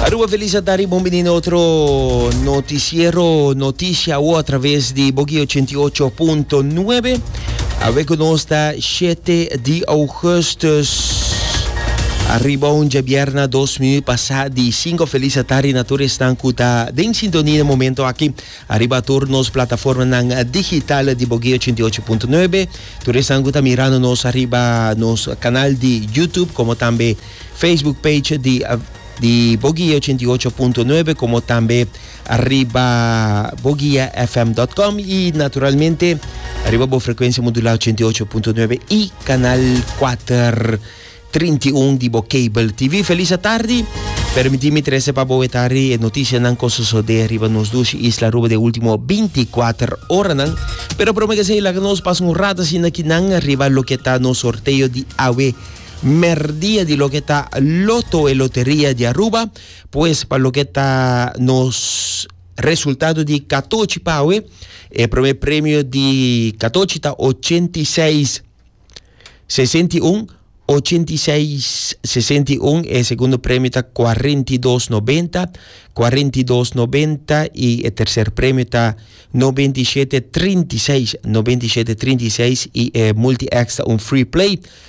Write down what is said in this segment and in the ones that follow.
Aruba feliz a tari bon bini na otro noticiero noticia o a través di Bogi 88.9 a we nos ta 7 di augustus arriba un jabierna dos minuut pasa di 5 feliz a tari na tur estan ku ta den sintonia na momento aki arriba tur nos plataforma nan digital di Bogi 88.9 tur estan ku ta mirando nos arriba nos canal di YouTube como tambe Facebook page di di Bo Guia ochenta i ocho punto nuebe komo tambe riba boguiafm dot com i naturalmente riba bo frekuensia modulá ochenta i ocho punto nuebe i kanal kuater trinta i un di bo kabel TV. Felis atardi. Permití mi trese pa bo wetari e notisianan ku sosodé riba nos dushi isla Aruba den último binti i kuater oranan. Pero promé ke esei laga nos pasa un rato asina kinan riba loke ta nos sorteo di awe. merdia di loke ta loto e loteria di Aruba pues pa loke ta nos resultado di katochi pa awe e prome premio di katochi ta ochenta i seis sesenta i un ochenta i seis sesenta i un e segundo premio ta cuarenta i dos noventa cuarenta i dos noventa i e tercer premio ta noventa i shete trinta i seis noventa i shete trinta i seis i e multi extra un free play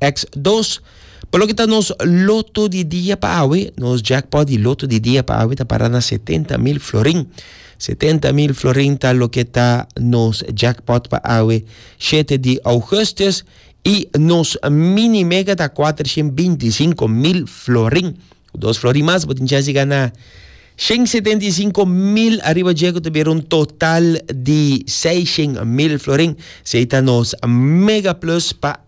Eks. Dos, pa loke ta nos loto di dia pa awe, nos jackpot di loto di dia pa awe ta para na setenta mil florin. Setenta mil florin ta loke ta nos jackpot pa awe shete di ougustus i nos mini mega ta kuatrashent binti i sinku mil florin. Ku dos florin mas bo tin chans di gana shent setenta i sinku mil ariba dje ku ta bira un total di seishent mil florin. Esei ta nos mega plus pa